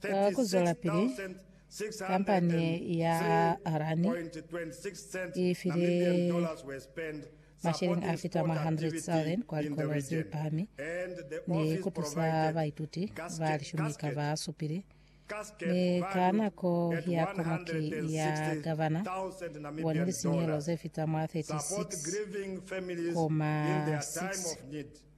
Ka ku zwelapili, kampani ya Harani i file masheleñi a fita mwa 100,000 kwa likolo ze pahami ni ku tusa baituti ba lishumi ka ba supile, mi ka nako ya Komiti ya Gavana i bone lisinyehelo ze fita mwa 36,6.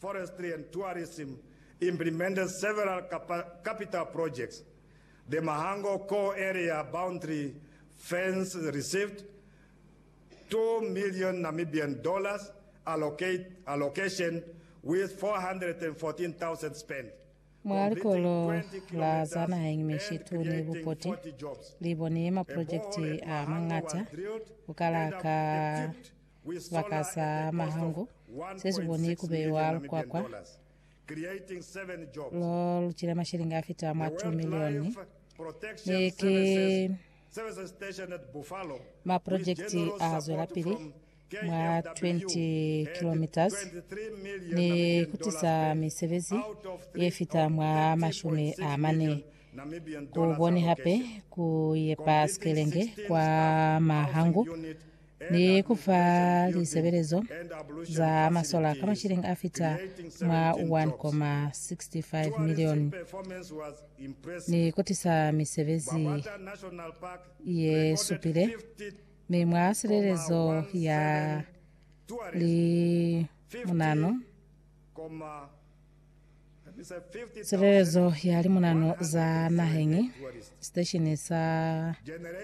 Forestry and Tourism implemented several capital projects, the Mahango Core Area Boundary Fence received two million Namibian dollars allocation with 414,000 spent, Mwa likolo la za naheng mishitu ni bupoti li boni maprojekiti a mañata ku kala ka Sibaka sa mahangu se si boni ku beiwa lukwakwa lo lu cila mashilingi a fita mwa 2 milioni, mi ki maprojekiti a zwelapili mwa 20 kilometres ni ku tisa misebezi ye fita mwa mashumi a mane. Ku boni hape ku yepa sikelenge kwa mahangu ni ku fa lisebelezo za masola ka mashilingi a fita mwa 1.65 milioni ni ku tisa misebezi ye supile mi mwa silelezo ya limunano silelezo ya limunano za naheñi station sa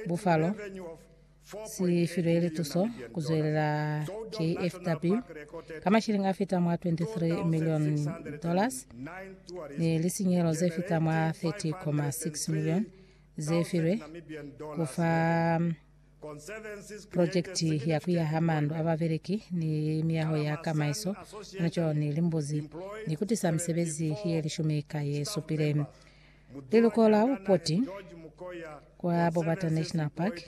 bufalo Si filwe lituso ku zwelela KFW ka mashilingi a fita mwa 23 milioni dollars ni lisinyehelo ze fita mwa 30.6 milioni ze filwe ku fa projekti ya ku yaha mandu a babeleki ni miyaho ya kamaiso mwa co ni limbuzi ni ku tisa misebezi ye lishumi ka ye supile. Liluko la bupoti kwa Bobata National Park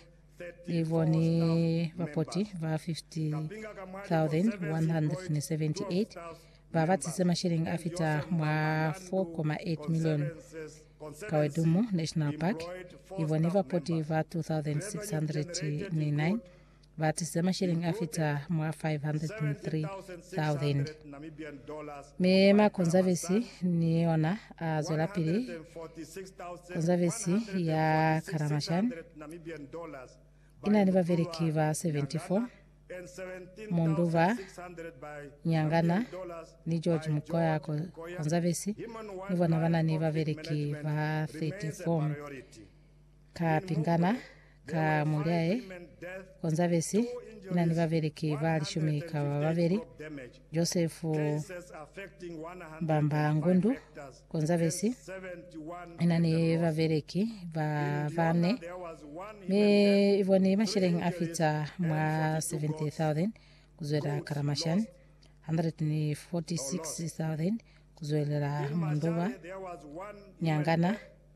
li boni bapoti ba 50,178 ba batise mashilingi a fita mwa 4.8 milioni. Kawedumu National Park i boni bapoti ba 2,609 ba tize masheleñi a fita mwa 503,000. Mi ma Konzavesi ni ona a zwelapili Konzavesi ya Karamashani ina ni babeleki ba 74, Munduba Nyangana ni George Mukoya Konzavesi ni bona bana ni babeleki ba 34. Ka pingana ka mulyaye Konzavesi ina ni babeleki ba lishumi ka ba babeli, Josefu Mbamba Ngundu. Konzavesi ina ni babeleki ba bane, mi iboni masheleng a fita mwa 70,000 kuzwela Karamashan, 146,000 kuzwelela Munduba, Nyangana,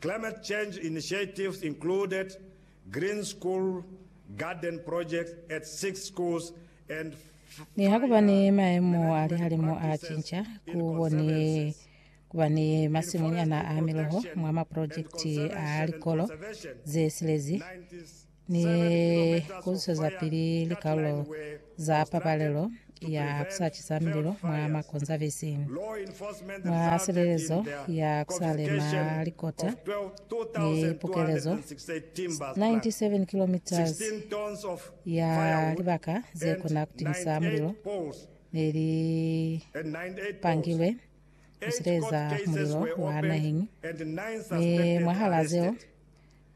Climate change initiatives included green school garden projects at six schools and Niha kuba ni maemo a lihalimu a cinca, ku koni kuba ni masimunyana a miloho mwa maprojekiti a likolo ze silezi. ni ku zwezapili likalulo za pabalelo ya ku sa cisa mililo mwa makonzavisi, mwa silelezo ya ku sa lema likota ni pukelezo 97 kilometres ya libaka ze kona ku timisa mulilo ne li pangilwe ku sileleza mulilo wa naheng, mi mwahala zeo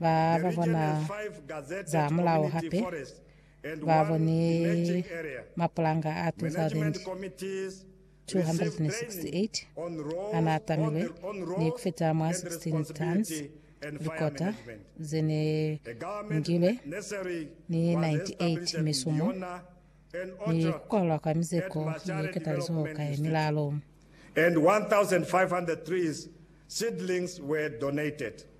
Ba ba bona za mulao hape ba boni mapulanga a 2,268 a n'a tamilwe ni ku fita mwa 16 tons likota ze ne ngilwe ni 98 misumo ni ku kwalwa kwa mizeko ye ketalizoho ka ye milalo. and 1,500 trees seedlings were donated.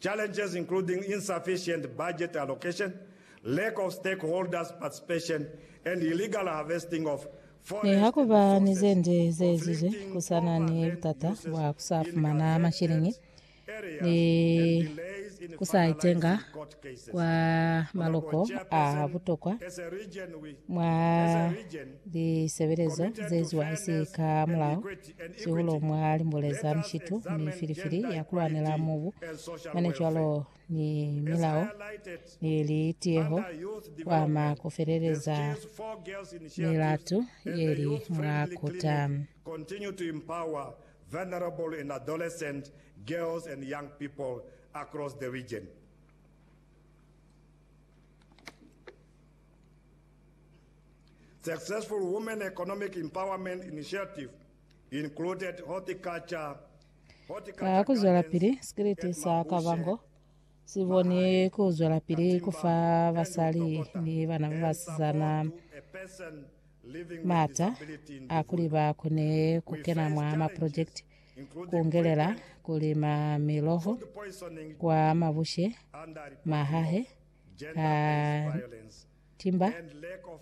Challenges including insufficient budget allocation, lack of stakeholders participation and illegal harvesting of forest resources. Nihakuba ni ze nde ze ezizwe, ku sa na ni butata bwa ku sa fumana masheleñi ni ku sa itenga kwa maloko a butokwa mwa lisebelezo ze eziwa isi ka mulao. Sihulu mwa limbuleza mishitu ni filifili ya kulwanela mubu, mane cwalo ni milao ni litiyeho kuama kufeleleza milatu yeli mwa kuta. Continue to empower vulnerable and adolescent girls and young people across the region. Successful Women Economic Empowerment Initiative included horticulture, Ka kuzwelapili, sikiliti sa Kavango si boni ku zwelapili ku fa basali ni bana ba basizana maata a kuli ba kone ku kena mwa maprojekiti ku ngelela ku lima miloho kwa mabushe, mahahe, ka timba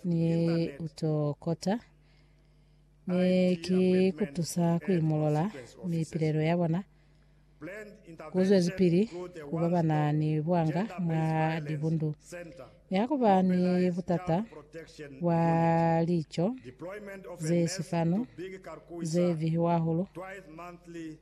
ni uto kota, mi ki kutusa kuimolola mipilelo ya bona kuzwezipili ku babana ni buanga mwa libundu. Nihakuba ni butata bwa lico ze sifanu ze bihiwa hahulu,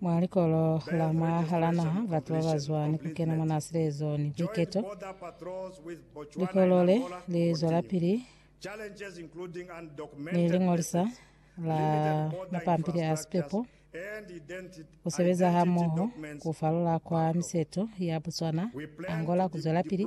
Mwa likolo la mwa hala naha, batu ba ba zwa ni ku kena mwa naa silezo ni buiketo. Likolo le li zwelapili ni liñolisa la mapampili a sipepo, ku sebeza hamoho ku falola kwa miseto ya Botswana, Angola ku zwelapili,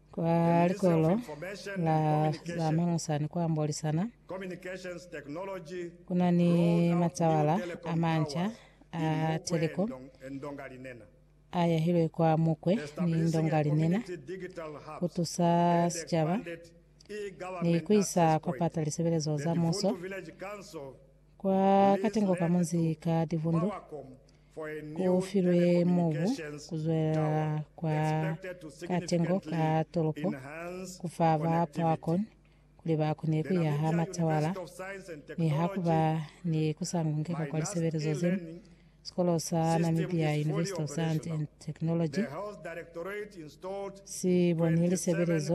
Kwa likolo la za manosani kwa Mbolisana, ku na ni matsawala a manca a teliko a yahilwe kwa Mukwe ni Ndongalinena ku tusa sicaba ni ku isa kwa pata lisebelezo za muso kwa katengo ka munzi ka Divundu ku filwe mubu ku zwelela kwa katengo ka tolopo ku fa ba Poakon kuli ba kone ku yaha matawala mi ha ku ba ni ku sa ngungeka kwa lisebelezo zeni. Sikolo sa Namibia University of Science and Technology si boni lisebelezo